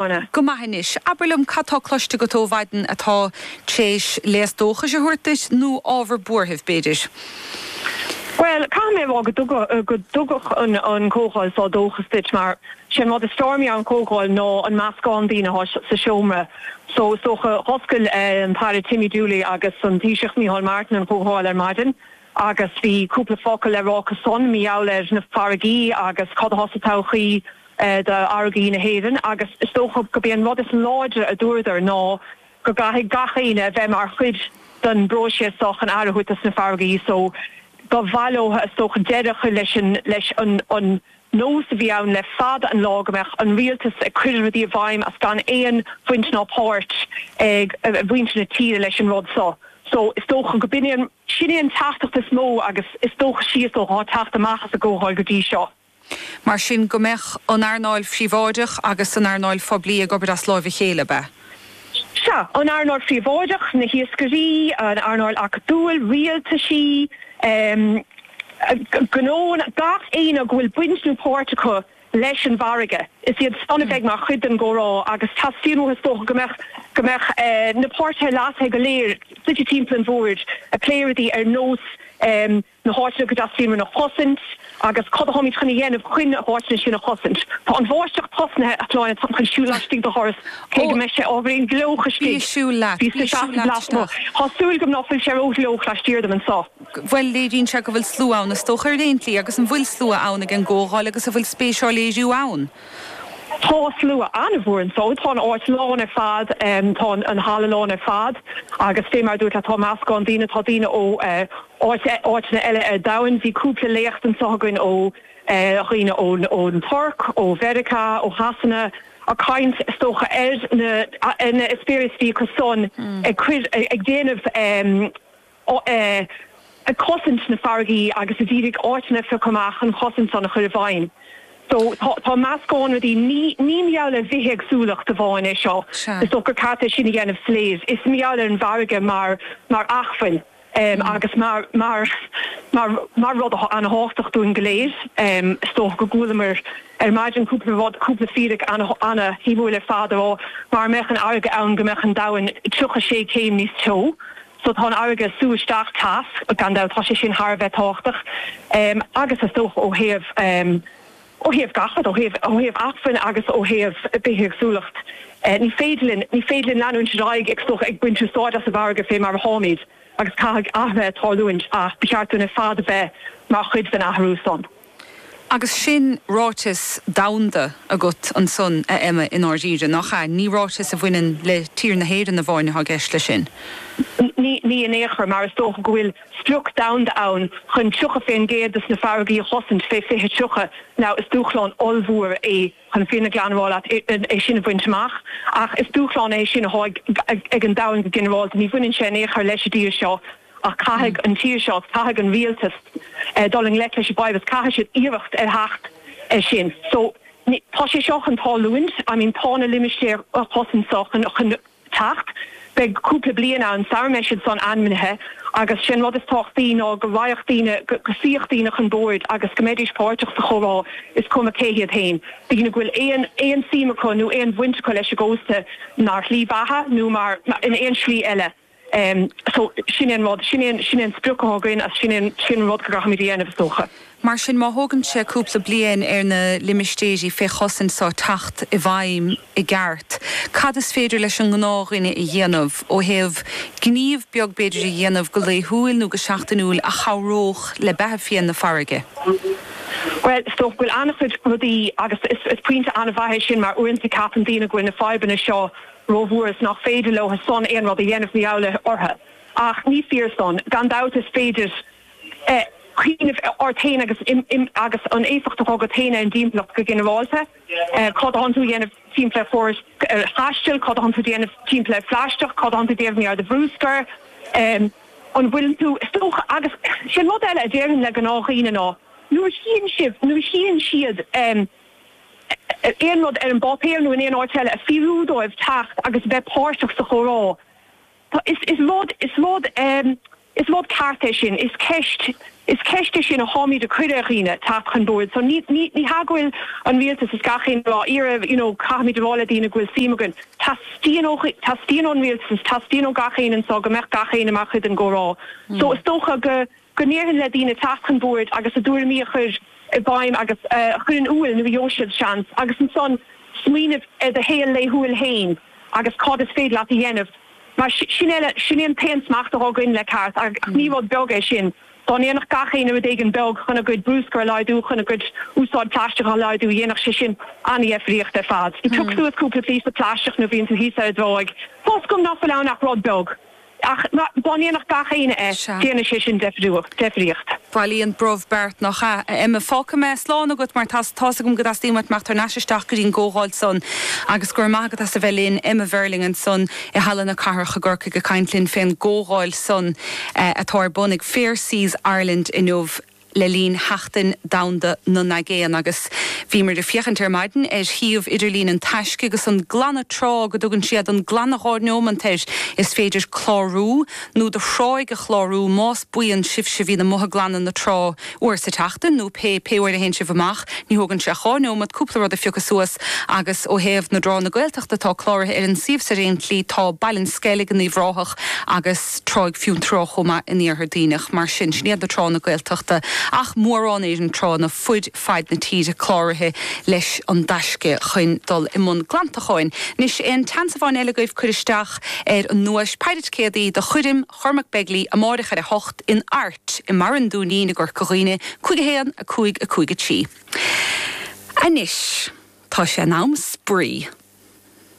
Anna. Go maith anois. Abair liom, cad tá cloiste agat ó mhaidin atá tar éis léas dóchais a thabhairt duit, nó ábhar buarthaimh, b'fhéidir? Bhuel, caithfidh mé a rá go dtugann an comhdháil seo dóchas duit, mar sé an rud is fearr mar gheall ar an chomhdháil ná an meascán daoine atá sa seomra. So, is dócha, d'oscail an tAire Timmy Dooley agus an Taoiseach Micheál Martin an chomhdháil ar maidin, agus bhí cúpla focal le rá acu san mar gheall ar na farraigí agus cad atá sa todhchaí d'fharraigí na hÉireann agus is dócha go b'é an rud is láidre a dúradar ná go gcaithfidh gach éinne a bheith mar chuid den bpróiséas so chun athruithe sna farraigí so ba mhaith leo is dócha deireadh a chur leis an Nós a bhí ann le fada an lá go mbeadh an rialtas ag cur rudaí i bhfeidhm agus gan aon bhaint ná páirt ag mhuintir na tíre leis an rud so. So, is dócha go b'in é an, sin é an teachtaireacht is mó agus is dócha sé is dócha tá ag teacht amach as an gComhdháil go dtí seo. Mar sin, go mbeadh an earnáil phríobháideach agus an earnáil phoiblí ag obair as láimh a chéile, ab ea? Sea, an earnáil phríobháideach, na hiascairí, an earnáil acadúil, rialtaisí, gnóanna, gach éinne go bhfuil baint nó páirt acu leis an bhfarraige, is iad san a bheidh mar chuid den gcomhrá agus teastaíonn uathu is dócha go mbeadh go mbeadh na páirtithe leasaithe go léir suite timpeall an bhoird ag plé rudaí ar nós na háiteanna go dteastaíonn uainn a chosaint agus cad a tháimid chun a dhéanamh chun na háiteanna sin a chosaint. Tá an bháisteach tosnaithe, a Shláine, táim chun siúl laistigh de dhoras, cé go mbeidh sé ábhairín gleoach istigh. Bí ag siúl leat. Bí ag siúl leat isteach. Tá súil agam ná fuil sé ró-ghleoach laistiar dom anseo. Bhuel, léiríonn sé go bhfuil slua ann, is dócha, ar aon tslí, agus an bhfuil slua ann ag an gcomhdháil agus an bhfuil spéis á léiriú ann? Tá slua an-mhór anso. Tá an áit lán ar fad. Tá an halla lán ar fad agus fé mar a dúrt leat tá meascán daoine, tá daoine ó áiteanna eile ar domhain. Bhí cúpla léacht anso againn ó dhaoine ón Tuirc, ó Mheiriceá, ó Shasana ag caint is dócha ar na experience a bhí acu san ag déanamh, ag cosaint na farraigí agus ag d'iarraidh áiteanna a phiocadh amach chun chosaint san a chur i bhfeidhm. So tá tá meascán rudaí. Ní ní mar gheall ar bhithéagsúlacht amháin é seo. Is dócha gur ceart é sin a dhéanamh soiléir. Is mar gheall ar an bhfarraige mar mar acmhainn um agus mar mar mar mar rud atá an-tábhachtach dúinn go léir. Um is dócha go gcualamar ar maidin cúpla rud cúpla fíric ana ana shuimiúil ar fad a rá mara mbeadh an fharraige ann go mbeadh an domhan 36 céim níos teo. So tá an fharraige ag sú isteach teas, gan dabht, tá sé sin thar a bheith tábhachtach agus is dócha ó thaobh, ó thaobh gach rud, ó thaobh, ó thaobh acmhainn agus ó thaobh bithéagsúlacht. Ní féidir linn, ní féidir linn leanúint ar aghaidh ag, ag baint úsáid as an bhfarraige fé mar a tháimid agus caithfidh athruithe tarlúint ach ba cheart dúinn ar fad a bheith mar chuid den athrú san. Agus sin ráiteas domhanda agat ansan, a Emma, i ndáiríre, nach ea? Ní ráiteas a bhaineann le tír na hÉireann amháin atá i gceist leis sin. Ní in aon chor, mar is dócha go bhfuil sprioc domhanda ann chun 30% des na farraigí a chosaint fé 2030. Now, is dúshlán ollmhór é chun fírinne ghlan a rá leat é sin a bhaint amach, ach is dúshlán é sin atá ag an domhan go ginearálta. Ní bhaineann sé in aon chor leis an dtír seo. Ach caithfidh an tír seo, caithfidh an rialtas dul i ngleic leis an bhfadhb agus caithfidh siad iarracht a theacht air sin. So, tá sé seo chun tarlúint, I mean tá na limistéir fé chosaint seo chun teacht. Beidh cúpla bliain ann sara mbeidh siad san ainmnithe agus sé'n rud is tábhachtaí ná go raghadh daoine, go suífeadh daoine chun boird agus go mbeidís páirteach sa chomhrá is cuma cé hiad fhéin, daoine go bhfuil aon, aon suim acu nó aon bhaint acu leis an gcósta mar shlí beatha nó mar, in aon slí eile. So, sin é an rud, sin é an, sin é an sprioc athá againn agus sin é an, sin an rud go gcaithfimid a dhéanamh is dócha. Mar sin, má thógann sé cúpla bliain ar na limistéirí fé chosaint seo teacht i bhfeidhm i gceart, cad is féidir leis an ngnáthdhuine a dhéanamh ó thaobh gníomh beag b'fhéidir a dhéanamh go laethúil nó go seachtainiúil a chabhródh le beatha fiáin na farraige? Bhuel, is dócha go bhfuil an-chuid rudaí agus is, is pointe an-mhaith é sin mar uaireanta ceapann daoine go bhfuil na fadhbanna seo, rómhór is nach féidir leothu san aon rud a dhéanamh mar gheall orthu. Ach ní fíor san. Gan dabht is féidir cuimhneamh ort féin agus an éifeacht athá agat féin ar an dtimpeallacht go ginearálta. Cad a thánn tú a dhéanamh timpeall ar chóras taistil? Cad a thánn tú a dhéanamh timpeall ar phlaisteach? Cad a thánn tú a dhéanamh timpeall ar do bhrúscar? An bhfuil tú, tá's agat? Agus sé an rud eile a déarfainn le gnáthdhaoine ná nuair a chíonn sibh, nuair a chíonn siad. aon rud ar an bpáipéar nó in aon áit eile, ag fiafraí dóibh teacht agus a bheith páirteach sa chomhrá. Tá, is, is rud, is rud, is rud ceart é sin, is ceist, is ceist é sin a thánmíd ag cur ar dhaoine, teacht chun boird. So ní, ní, ní hea go bhfuil an Rialtas is gach éinne ag iarraidh, you know, caithfimid a rá le daoine go bhfuil suim againn. Teastaíonn ó, teastaíonn ón Rialtas is teastaíonn ó gach éinne anso go mbeadh gach éinne mar chuid den gcomhrá. So is dócha go. go ndéarfainn le daoine teacht chun boird agus a dtuairimí a chur i bhfeidhm agus a chur in iúil, nuair a gheobhaidh siad seans, agus ansan smaoineamh ar do shaol laethúil féin agus cad is féidir leat a dhéanamh. Mar sin é, sin é an t-aon smacht athá againn le ceart, ach ní rud beag é sin. Dá ndéanfadh gach éinne rud éigin beag chun a gcuid brúscar a laghdú, chun a gcuid úsáid plaisteach a laghdú, dhéanfadh sé sin an-dheifríocht ar fad. Piocadh suas cúpla píosa plaisteach nuair a bhíonn tú thíos ar an dtráigh, tá 's agam nach bhfuil ann ach rud beag. Ach dá ndéanfadh gach éinne é, Sea. dhéanfadh sé sin deifríocht. Bailíonn brobh beart, nach ea? A Emma, fágfaidh mé slán agat mar tá's agam go dteastaíonn uait imeacht thar n-ais isteach go dtí an gcomhdháil san agus go raibh maith agat as a bheith linn. Emma Verling ansan i Halla na Cathrach i gCorcaigh ag caint linn fén gcomhdháil san atá ar bun ag Fair Seas Ireland inniu. le linn Sheachtain Domhanda na nAigéan agus bhíomar ag féachaint ar maidin ar shuíomh idirlín an Taisce agus an glanadh trá go dtugann siad an glanadh dhá neomat air is féidir clárú nó do thráigh a chlárú más buíon sibhse a bhíonn amuigh ag glanadh na trá uair sa tseachtain nó pé pé uair a théann sibh amach ní thógann sé ach dhá neomat cúpla rud a phiocadh suas agus ó thaobh na dtránna Gaeltachta atá cláraithe ar an suíomh sa tslí tá Baile an Sceilg in Uíbh Ráthach agus tráigh Fionntrá chomh maith in iarthar Duibhneach. Mar sin, sin iad na tránna Gaeltachta, ach mórán Éireann tránna ar fuaid faid na tíre cláraithe leis an dtaisce chuin dul i mbun glantacháin. Anois, aon tseansamhain eile agaibh, cuir isteach ar an nduais péire ticéadaí do chuirim Chormac Begley amáireach ar a hocht in Airt i mBarra an Dúinín i gCorca Dhuibhne, cúig a haon, a cúig, a cúig a trí. Anois, tá sé in am spraoi!